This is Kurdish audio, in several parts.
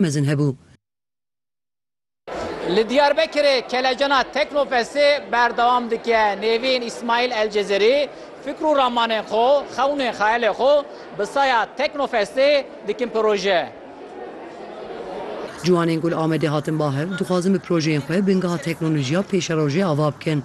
mezin hebû. Li Diyarbekirê Kelecana Teknofestê berdewam dike. Nêvîn Îsmaîl Elcezerî fikr û ramanên xwe, xewnên xeyalê xwe bi saya Teknofestê dikin proje. Ciwanên ku li Amedê hatin ba hev, dixwazin bi projeyên xwe bingeha teknolojiya pêşerojê ava bikin.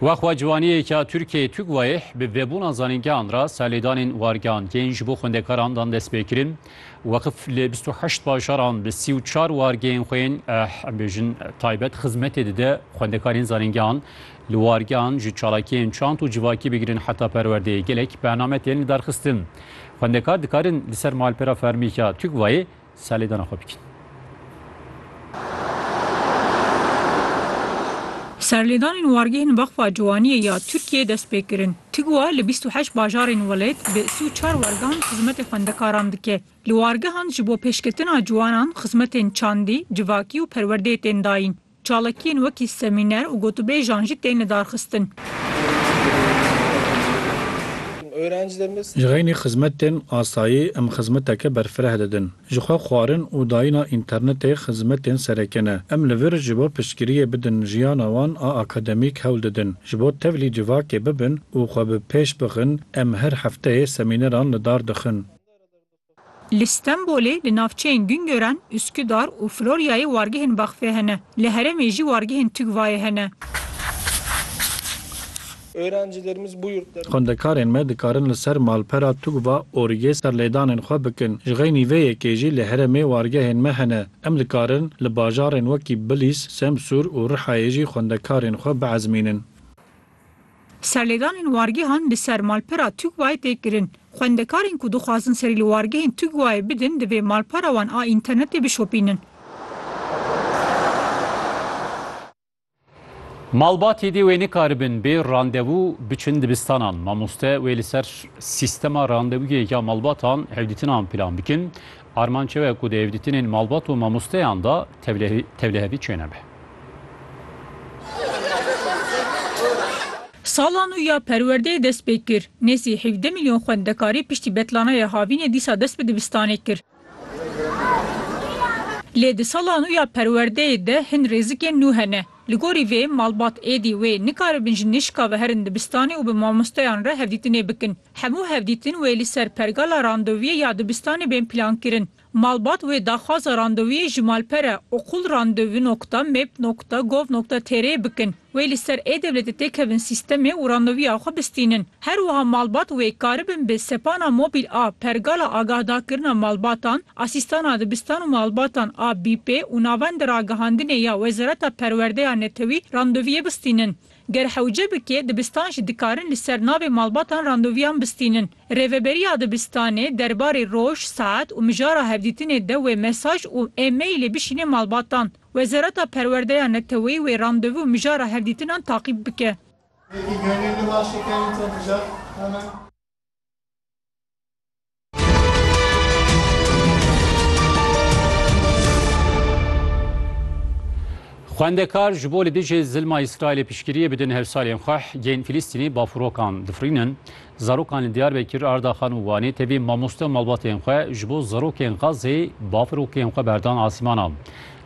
Wexwa ciwaniyêka Tirkiyeyê TUGVAyih bi vebûna zanîngehan re serlêdanên wargehangên ji bo xwendekaran dan destpêkirin. Weqif li bîst û heşt bajaran bi sî û çar wargehên xwe yên em bêjin taybet xizmetê dide xwendekarên zanîngehan. Li wargehan ji çalakiyên çand û civakî bigirin heta perwerdeyê gelek bername tên lidarxistin. Xwendekar dikarin li ser malpera fermîka TUGVAyê Salêdana xwe bikin. Serlêdanên wargehên Weqfa Ciwaniyê ya Tirkiyeyê dest pê kirin. TGWA li bîst û heşt bajarên welêt bi sî û çar wargehan xizmetê xwendekaran dike. Li wargehan ji bo pêşketina ciwanan xizmetên çandî, civakî û perwerdeyê tên dayîn. Çalakiyên wekî semîner û gotûbêjan jî tên lidarxistin. Ji xeynî xizmetên asayî em xizmeteke berfireh didin. Jixwe xwarin û dayîna înternetê xizmetên sereke ne. Em li vir ji bo piştgiriyê bidin jiyana wan a akademîk hewl didin. Ji bo tevlî civakê bibin û xwe bi pêş bixin em her hefteyê semîneran lidar dixin. Li Stenbolê li navçeyên Güngören, Üsküdar û Floryayê wargehên Vakfê hene. Li heremê jî wargehên TÜGVA'yê hene. Xwendekarên me dikarin li ser malpera TÜGVA ORG'ê serlêdanên xwe bikin. Ji xeynî vê yekê jî li heremê wargehên me hene. Em dikarin li bajarên wekî Bilîs, Semsûr û Rihayê jî xwendekarên xwe biezmînin. Serlêdanên wargehan li ser malpera Tugwayê tê kirin. Xwendekarên ku dixwazin serî li wargehên Tugwayê bidin divê malpara wan a înternetê bişopînin. Malbatê dê wê nikaribin bê randevû biçin dibistanan. Mamoste wê li ser sîstema randevûyê ya malbatan hevdîtinan plan bikin. Armanc ew e ku di hevdîtinên malbat û mamosteyan de tevlihevî çênebe. Sala nû ya perwerdeyê dest pê kir. Nêzî hevdeh milyon xwendekarî piştî betlanaya havînê dîsa dest bi dibistanê kir. Lê di sala nû ya perwerdeyê de hin rêzikên nû hene. Li gorî vê malbat êdî wê nikaribin ji nişka ve herin dibistanê û bi mamosteyan re hevdîtinê bikin. Hemû hevdîtin wê li ser pergala randevûyê ya dibistanê bên plankirin. Malbat wê daxwaza randevûyê ji malpere okulrandevu nokta meb nokta gov nokta tr yê bikin. Wê li ser e-Dewletê tê kevin sîstemê û randevûya xwe bistînin. Her wiha malbat wê karibin bi sepana mobîl a Pergala Agahdakirina Malbatan, Asîstana Dibistan û Malbatan a BIPê û Navenda Ragihandinê ya Wezareta Perwerdeya Netewî randevûyê bistînin. Ger hewce bike, dibistan jî dikarin li ser navê malbatan randevuyan bistînin. Rêveberiya dibistanê derbarê roj, saet û mijara hevdîtinê de wê mesaj û e-mailê bişîne malbatan. Wezareta Perwerdeya Neteweyî wê randevu û mijara hevdîtinan taqîb bike. Wekî Gurê Liwaşê Kevin Tomica, Hemen. Xwendekar ji bo li dijî zilma Îsraîlê piştgiriyê bidin hevsalên xwe hgên Filîstînê bafirokan difirînin. Zarokan li Diyarbekir, Ardaxan û Wanê tevî mamoste û malbatên xwe ji bo zarokên Xazzê bafirokên xwe berdan asîmana.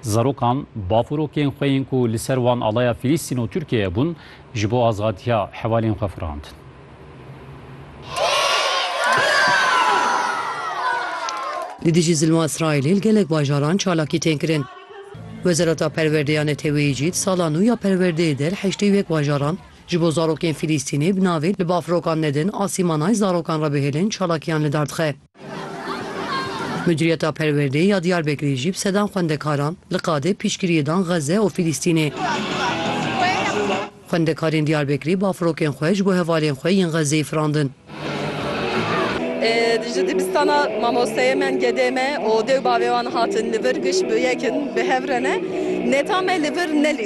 Zarokan bafirokên xwe yên ku li ser wan alaya Filîstîn û Tirkiyeyê bûn ji bo azadiya hevalên xwe firandin. Li dijî zilma Îsraîlê li gelek bajaran çalakî tên kirin. Wezareta Perwerdê ya Neteweyî jî di sala nû ya perwerdeyê de li heştê û yek bajaran ji bo zarokên Fîlîstînê bi navê Li bafrokan nedin asîmanay zarokan re bihêlin çalakiyan li dar dixe. Muciriyeta Perwerdeyê ya Diyarbekirê jî bi sedan xwendekaran li qadê piştgiriyê dan Xezze û Filîstînê. Xwendekarên Diyarbekirê bafirokên xwe ji bo hevalên xwe yên Xezzeyê firandin. Ji dibistana mamosteyê me yên gedê me û dê û bavê wan hatin li vir giş bi yek in, bi hev re ne. Neta me li vir ne